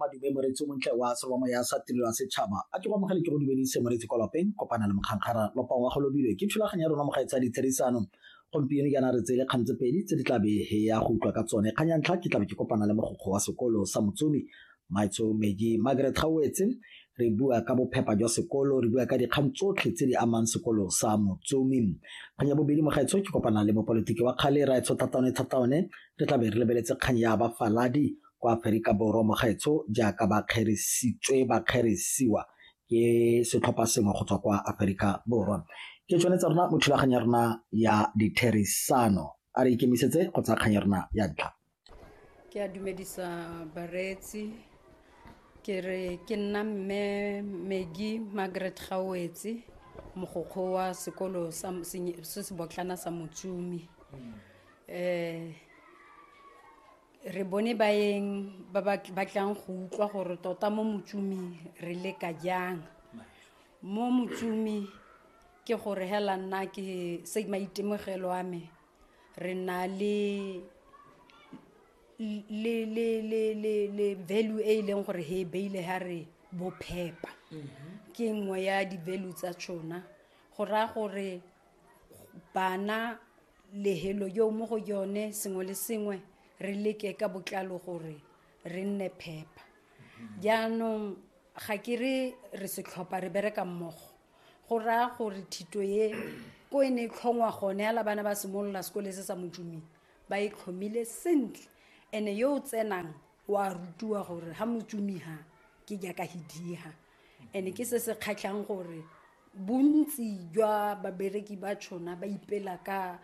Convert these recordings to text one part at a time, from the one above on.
madume moreetsi o montle wa selo wa moya sa tirelo ya setšhaba a ke go amogele ke go dumedise moreetsi kwa lapeng kopana le mokgangkgara lopa wa go lobilwe ke thulaganyo ya rona mogae tsa ditherisano gompieno jaana re tseye kgang tse pedi tse di tlabe he ya go utlwa ka tsone kgang ya ntlha ke tlabe ke kopana le mogokgo wa sekolo sa motsomi maitso meji margaret gauetse re bua ka bophepa jwa sekolo re bua ka dikgang tsotlhe tse di amang sekolo sa motsomi kgang ya bobedi mogaetsho ke kopana le mopolitiki wa kgale raetsho thataone thataone Re tla be re lebeletse kgang ya bafaladi kwa Aferika Borwa mogaetsho jaaka ba kgerisitswe ba kgerisiwa ke setlhopha sengwe go tswa kwa Aferika Borwa. Ke tsone tsa rona mo thulaganyo ya rona ya ditherisano a re ikemisetse go tsaya kgang ya rona ya ntlha. Ke a dumedisa bareetsi ke re ke nna mme Maggie Margaret Gawetse mogokgo wa sekolo se se botlana sa Motsumi. um re bone baeng ba ba batlang go utlwa gore tota mo motsumi re leka jang mo motsumi ke gore hela nna ke se maitemogelo a me re na le le le le le le value e e leng gore he beile ha re bophepa mm-hmm. ke nngwe ya di-value tsa tšona go raya gore bana lehelo yo mo go yone sengwe le sengwe re leke ka botlalo gore re nne phepa jaanong ga ke re re setlhopha re bereka mmogo go raya gore thito ye ko e ne e tlhongwa gone ala bana ba simolola sekole se sa motumeng ba e tlhomile sentle ene yo o tsenang wa rutiwa gore ga motumiga ke jaaka hidiga and ke se se kgatlhang gore bontsi jwa babereki ba tshona ba ipela ka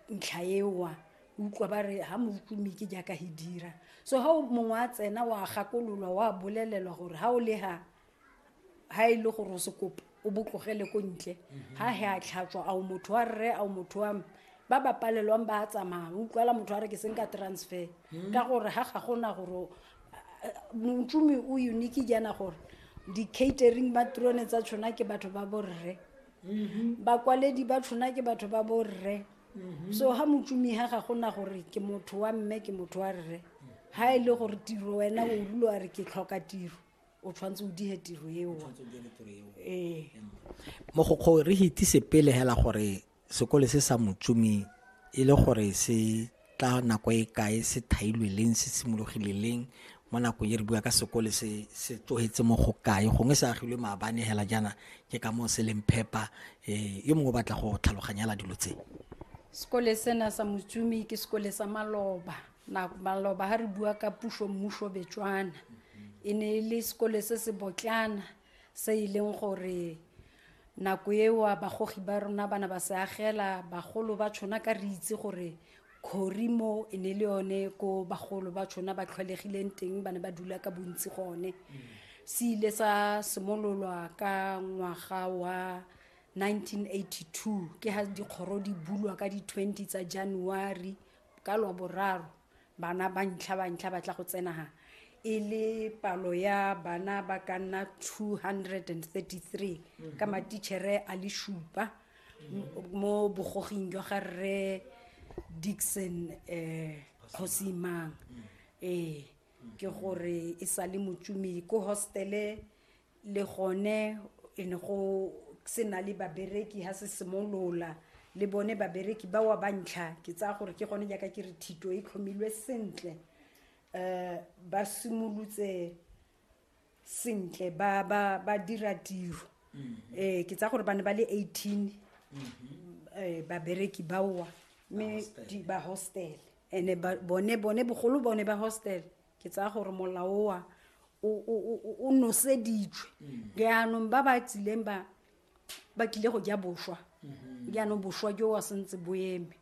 ntlha ewa utlwa ba re ga motlumi ke jaaka he dira so ga mongwe a tsena wa gakololwa wa bolelelwa gore ga o le ga ga e le gore o se kopa o botlogele ko ntle ga he a tlhatswa ao motho wa rre ao motho wa ba ba palelwang ba a tsamaya o utlwala motho wa re ke seng ka transfer hmm. ka gore ga ga gona gore montsomi o unique jaana gore di-catering ba trone tsa tshona ke batho ba borre mm-hmm. bakwaledi ba tshona ke batho ba borre mm-hmm. so ga motsomi ga ga gona gore ke motho wa mme ke motho wa rre ga e le gore tiro wena o rule wa re ke tlhoka tiro o tshwanetse o dihe tiro eo ee mogokgo re hitise pele hela gore sekole se sa motsumi e le gore se tla nako e kae se thailwe leng se simologile leng mo nakong e re bua ka sekole se se tlogetse mo go kae gongwe se agilwe maabane hela jaana ke ka moo se leng phepa um yo mongwe o batla go tlhaloganyela dilo tse sekole sena sa motsumi ke sekole sa maloba na maloba ha re bua ka puso mmuso betswana e ne e le sekole se se botlana se e leng gore nako eo bagogi ba rona bana ba se agela bagolo ba tshwana ka re itse gore khori mo e ne le yone ko bagolo ba tshwana ba tlhwalegileng teng ba ne ba dula ka bontsi gone se ile sa simololwa ka ngwaga wa 1982 ke ha dikgoro di bulwa ka di-20 tsa january ka lwaboraro bana ba ntlha ba ntlha ba tla go tsenaga e le palo ya bana ba ka nna 233 ka matitšhere a le šupa mo bogoging jwa ga rre dixon um kgosimang ee ke gore e sa le motsumi ko hostele le gone e ne go se na le babereki ha se simolola le bone babereki ba wa ba ntlha ke tsaya gore ke gone jaaka ke re thito e tlhomilwe sentle um ba simolotse sentle ba ba ba dira tiro um ke tsaya gore ba ne ba le eighteen um babereki baowa mme ba hostel and bone bone bogolo bone ba hostel ke tsaya gore molaoa o noseditswe mm. jaanong ba ba tsileng ba ba tlile go ja boswa mm-hmm. jaanong boswa jo wa sentse bo eme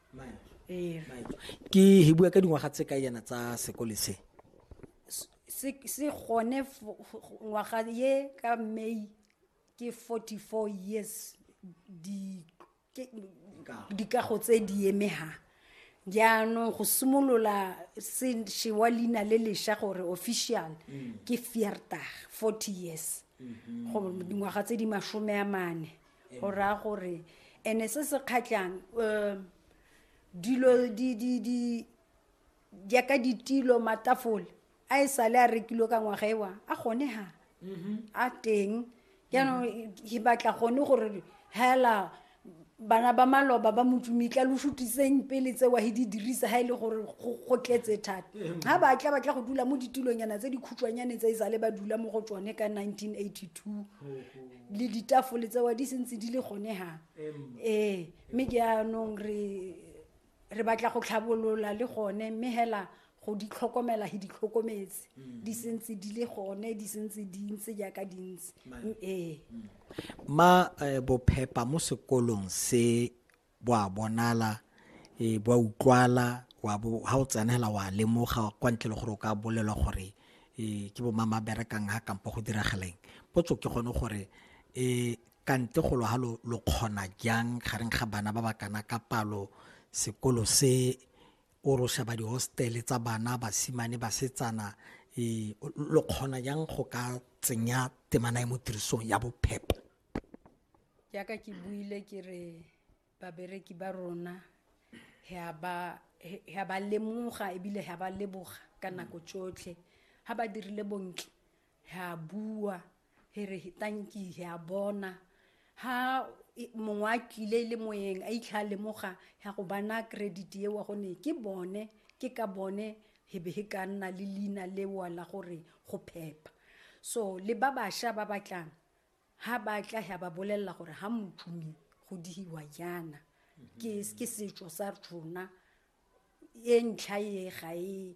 ee. ke he bua ka dingwaga tse ka yana tsa sekole se se gone ngwaga ye ka may ke 44 years di ke dikago tse di emegang jaanong go simolola se wa leina le lesha gore official mm. ke fiertag forty years mm-hmm. go dingwaga tse di masome a mane go raya gore ene se se kgatlhang um dilo jaaka ditilo matafole a e sale a rekilwe ka ngwaga ewa a gone ha a teng jaanong ke batla gone gore hela bana ba maloba ba motsumitla lo sutiseng pele tsewa he di dirisa ha e le gore go go tletse thata ga batla batla go dula mo ditulonyana tse dikhutshwanyane tse e sale ba dula mo go tsone ka 1982 le ditafole tsewa di sentse di le gone ha ee mme jaanong re re batla go tlhabolola le gone mme hela go di tlhokomela he di tlhokometse mm. di sentse di le gone di sentse di ntse jaaka di ntse mm, ee mm. ma eh, bophepa mo sekolong se bo a bonala e bo utlwala wa bo ha o tsenela wa lemoga kwa ntle le gore o ka bolelwa gore e ke bo mama berekang ha kampo go dirageleng potso ke gone gore e kante golo ha lo lo kgona jang gareng ga bana ba ba kana ka palo sekolo se o ro shaba di hostel tsa bana basimane basetsana e lo kgona jang go ka tsenya temana e mo tirisong ya bophepho jaaka ke buile ke re babereki ba rona ga ba ga ba lemoga ebile ga ba leboga ka nako tsotlhe ga ba dirile bontle he a bua he re tanki he a bona ha mongwe a tlile le moyeng a itlha a lemoga ya go bana credit eo gone ke bone ke ka bone he be he ka nna le leina lewa la gore go phepa so le ba bašwa ba batlang ha ba tla ya ba bolelela gore ha motšhumi go dihiwa yana ke setso sa rona e ntlha e ga e